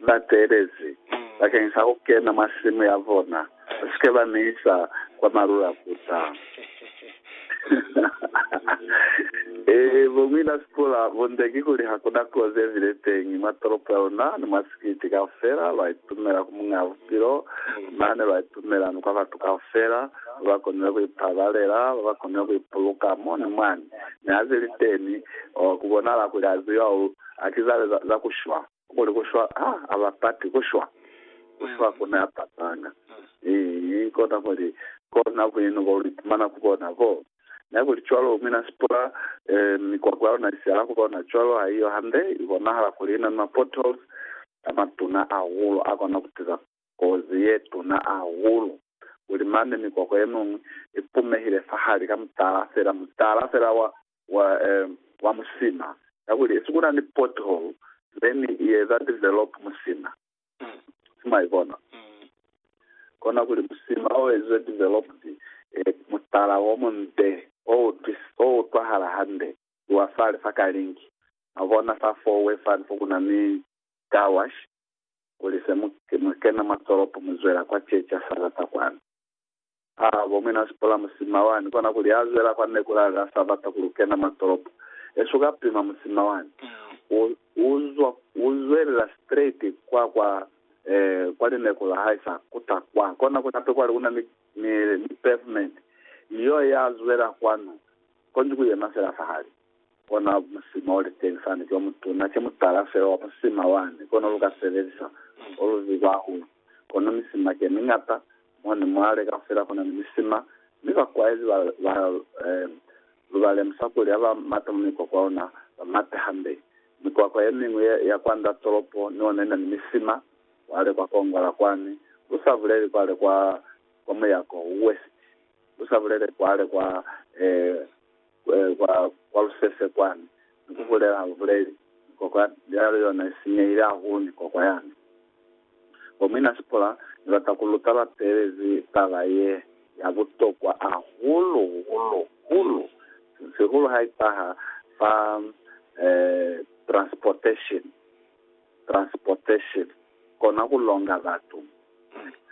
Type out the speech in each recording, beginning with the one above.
ni bateelezi bakeng sa ku kena mwa simu ya bona, ba si ke ba mi isa kwa malulakuta. Ee, bo mwi la sikola bo nde kikuli ha ku na kozi ye bile teñi mwa tolopo ya luna ni mwa sikiti kaufela, lwa itumela ku Muñ'a Bupilo, mane lwa itumela ni kwa batu kaufela ba ba konile ku ipabalela, ba ba konile ku ipuluka mo ni mwani. Mi ha ze li teni, oh, ku bonahala kuli a ziba u akiza le za, za ku shwa. Kuli ku shwa ha a bapati ku shwa. Ku shwa ku na patanga. Ii, kona kuli, kona buñanu bo lu ipumana ku bona bo. Na kuli cwalo, mi na sipula, eh, mikwakwa ya luna i sihala ku bona cwalo, haiyo hande? I bonahala kuli i na ni ma-potholes a matuna ahulu a kona ku tiza. kozi ye tuna hahulu, kuli mane mikwakwa ye miñwi i pumehile fahali ka mutala fela, mutala fela wa, wa, eh, wa musima, kakuli isi kuna ni pothole, me ni i eza develop musima. Si mwa ibona? Kona kuli musima o ezizwe developed, eh, mutala wo munde, o utwis, o utwahala hande, ki wa fale fa ka link. Mwa bona fa four-way fani fo kuna ni car wash, kuli se mu ke mwa kena mwa tolopo mu zwela kwa Chechi ya Sabata kwani. Ha bo mwina sipola musima wani, kona kuli ha zwela kwa Nekulali ha sa bata kuli u kena mwa tolopo. Esu ka pima musima wani. U, u zwa, u zwelela straight kwa, kwa, eh, kwa lineku la hae sa kuta kwa. Kona kuli hape kwale kuna ni, ni, ni pavement. Ni yo ya zwela kwanu. Konji ku yema fela fahali. Kona musima oliteni sani ki omutuna, ki mutala fela wa musima wani, kono luka sebelisa olubi kwahulu. Kono misima kemiñata mo ni mwale kaufela kuna ni misima, mi bakwaezi ba, ba, um, lu ba lemusa kuli ha ba mata mu mikwakwa ona, ba mate hande. Mikwakwa yemiñwi ya, ya kwanda tolopo ni ona ina ni misima, kwale kwa kongola kwani, lu sa buleli kwale kwa, kwa muyako, west, lu sa bulele kwale kwa, um, kwa, kwa lusese kwani, ni ku bulela, lu buleli, Ni kokwa yale yona i sinyehile hahulu, ni kokwa yani. Bo muina Sipora, Ni bata ku lu talapelezi taba ye ya butokwa hahulu, hulu, hulu, sihulu ha i taha fa, eh, transportation, transportation, kona ku longa batu.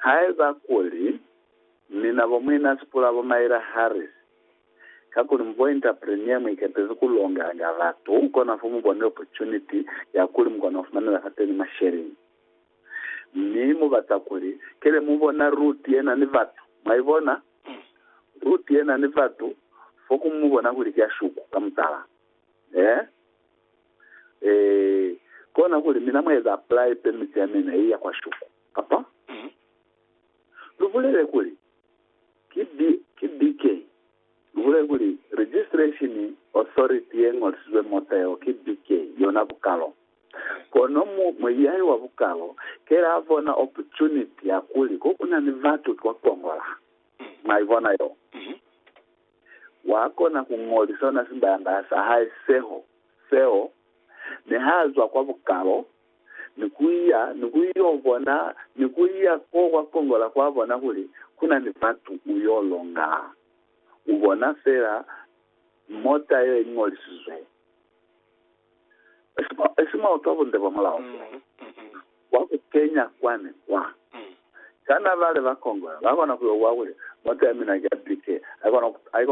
Haiba kuli, mina bo muina Sipora, bo Myra Harris, Kakuli mu pointa premiere mu ikepezi ku longanga batu, kona fo mu bone opportunity ya kuli mu kona ku fumanela fateni masheleni. Mi mu bata kuli, kele mu bona route ye na ni batu. Mwa ibona? Route ye na ni batu, fo ku mu bona kuli ki ya shuku, ka mutala. Eh? Eh, kona kuli mina mwa eza apply permit ya mina ye ya kwa shuku. Kapa? Lu bulele kuli, Ki bi, ki BK. Muhule kuli, Registration Authority ye Ñolisizwe Moteo ki BK, yona bukalo. Kono mu, muiyahi wa bukalo kele a bona opportunity ya kuli ko ku na ni batu kwa Congo la. Mwa ibona yo? Wa kona ku ñolisa ona simbayambaya sa hae seho, seo, mi ha zwa kwa bukalo, ni kuya ni kuyo bona ni kuya ko kwa kongola kwa bona kuli kuna ni batu uyo longa. Ubona fela mota ye ingolisizwe Esimoto bunde bwa mulao fela bwa ku kenya kwa ni kwa. Kana bale ba kongola ba kona kuyo bwa kuli, Mota ya mina ki ya bike, haikona